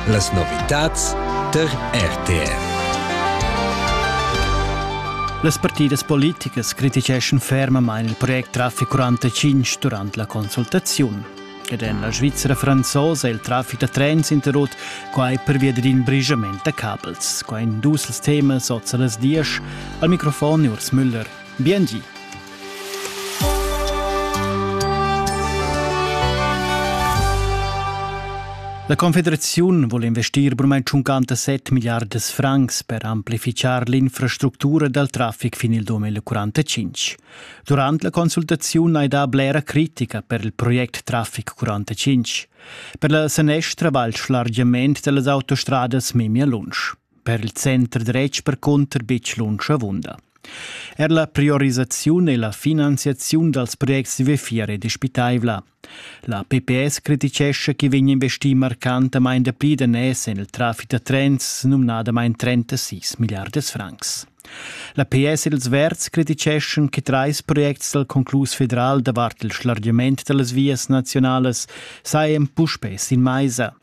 Las novitads tar RTR. Las partidas politicas criticheschan fermamain il project Traffic 45 durant la consultaziun. Ed en la Svizzera franzosa è il traffic da trens interrut quai pervia d'in brigiament da cabels. Qua in dus temas oz a las diesch. Al microfon Urs Müller. Biengi. La Confederaziun vul investir burmain 57 milliardas francs per amplifichar l'infrastructura dal traffic fin il 2045. Durant la consultaziun hai dà blera critica per il project Traffic 45. Per la sanestra va il schlargiament da las autostradas memia lunsch. Per il center dretg percunter betg lunsch avunda. Er la priorisaziun e la finanziaziun dals projects di vefier è dispitaivla. La PPS criticescha che vegn investì marcantamain dapli daners en il traffic da trens, numnadamain 36 milliards francs. La PS e ils Verds criticeschan che trais projects dal conclus federal davart il schlargiament da las vias nazionalas sajan puspè sin maisa.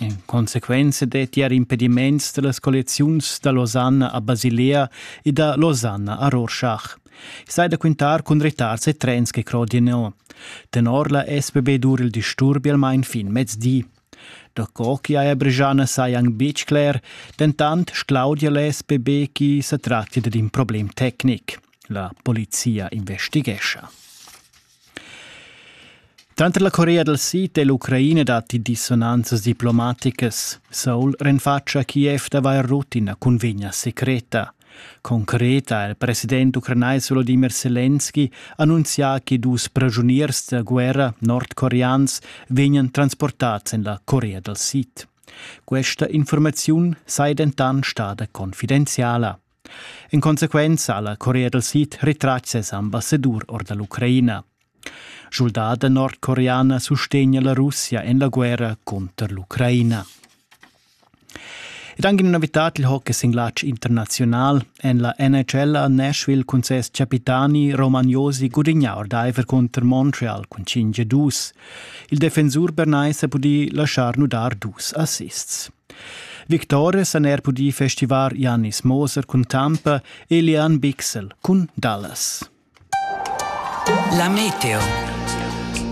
In consequenza detti er impediments da las colliaziuns da Losanna a Basilea e da Losanna a Rorschach. I sai da quintar cun retards e trens che crodino. Tenor la SBB dur il disturbi almain fin mezdi. Da co che haja Bregiana sai anc betg cler, dentant sclaudia l'SBB chi sa tratti dad in problem tecnic. La polizia investighescha. Tranter la Corea dal Sid e l'Ucraina datti dissonanzas diplomaticas. Seul renfatscha Kiev d'avair rut ina cunvegna secreta. Concreta ha il president ucranais Volodimir Selenski annunzià che dus pragiuniers da guerra nordcoreans vegnan transportads en la Corea dal Sid. Questa informaziun sei dentant stada confidenziala. In consequenza ha la Corea dal Sid retratg ses ambassadur or da l'Ucraina. Schuldada nordcoreana sustegna la Russia en la guerra cunter l'Ucraina. Ed anche una novità il hockey sin lancio internazional en la NHL a Nashville cun ses capitani Romagnosi gudigna ordaiver contro Montreal cun 5-2. Il defensur bernais ha pudì lasciar nudar dus assists. Victores han er pudì festivar Janis Moser cun Tampa e Leanne Bixel cun Dallas. La meteo.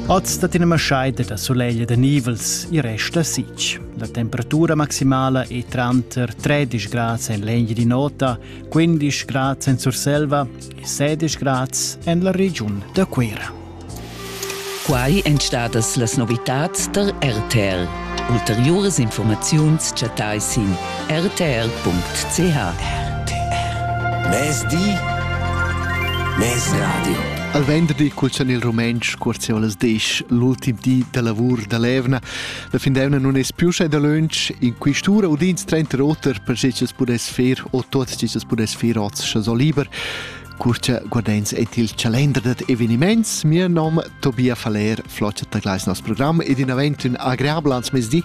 Oz dat ina maschaida da solegl da nivels e resta sic. La temperatura maximala è tranter 13 grads en l'Engi di Nota, 15 grads en Surselva e 16 grads en la regiun da Cuira. Quai èn stadas las novitads tar RTL. Ulteriuras informaziuns chattais sin rtr.ch. Mezdi, mez radio. Al venderdi cuzzan il rumentsch cuorzeolas disch l'ultim di da lavur da l'evna. La fin d'evna non es più sche da lunch in quistura udins 30 roter per schichas pudess fer o tot schichas pudess fer oz scha so liber. Cur cha guardains eir il chalender dad evenimaints, mia nom Tobia Faller flocha tar gleis nos program ed inavant ün agreabel ans mezdi.